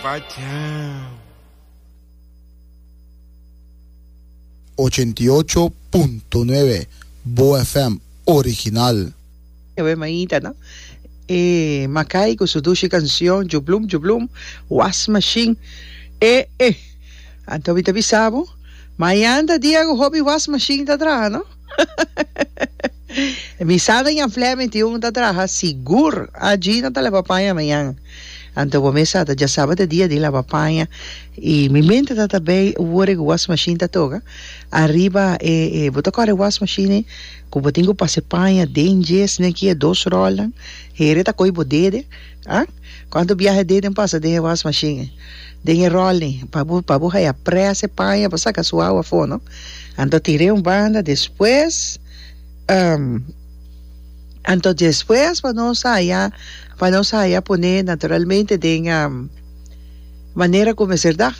Pachao. Ochenta i ocho punto nuebe, Boa FM original. Ewe maita no. E Makai cu su dushi cancion Djublum djublum, Wash machine e e. Anto mi ta bisa bo, Mayanda dia cu hopi wash machine ta traha no. Mi sa den ya flè mi tio mi ta traha sigur a Gina ta leba paña mañan anto bo mesa ta dja sabata e dia di laba paña y mi mente ta ta bay wor e wash machine ta toga ariba e e bo ta kòrda e wash machine ku bo tin ku pasa e paña den dje sneki e dos ròlnan heren ta kohe bo dede Ha? Cuanto biahe deden pasa den e was machine e, den e rolling e, pa bo pa bo haya presa e paña pa saca su awa afo, no? Anto tire un banda despues um anto despues pa nos haya pa nos haya pone naturalmente den um manera cu mester daf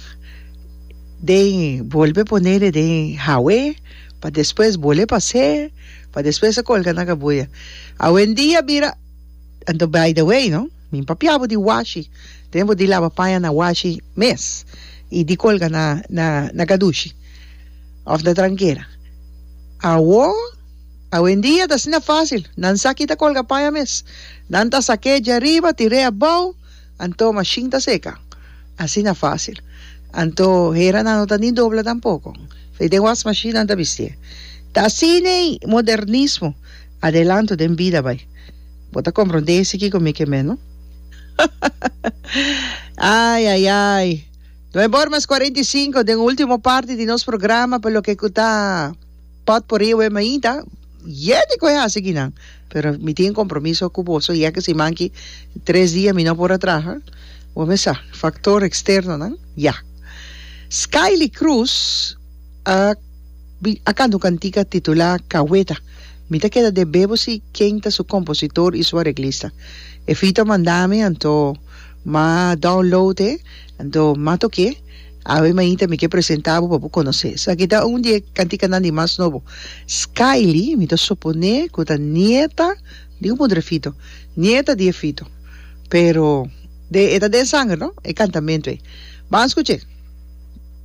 den bolbe ponele den hawe pa despues bole pase pa despues a colga nan cabuya. Awendia bira. Anto by the way no mi papia bo di washi den bo di laba paña na washi mes y di colga na na na gadushi of na tranquera awo awendia ta asina facil nan sa kita colga paña mes nan ta sake dje ariba tire abao anto machine ta seca asina facil anto hera nan no ta ni dobla tampoco so den wash machine nan ta bistie ta asiney modernismo adelanto den bida bay. Bo ta comprende esi ki komi ke meno? Ai ai ai. No e bor mas cuarenta y cinco den ultimo parti di nos programa pa loke ku ta pot por ewe mainta. Yeh di ku e hasi kinan. Pero mi tin compromiso ku bo so yeh ke siman ki tres dia mi no por a traha. Bo mes sa factor externonan ya. Skylie Cruz a a canta un cantica titula Caweta. Mi ta keda dé bebo si ken ta su kompositor i su areglista. Efito a manda mi anto m'a download e anto m'a tok'é. Awe mainta mi ke presentá bo pa bo konosé. Esaki ta un di e kantikanan di mas nobo. Skyly, mi ta suponé ku ta nieta di un mudre Fito, nieta di e Fito. Pero e ta den sanger no, e kantamentu ei. Ban skuch'é.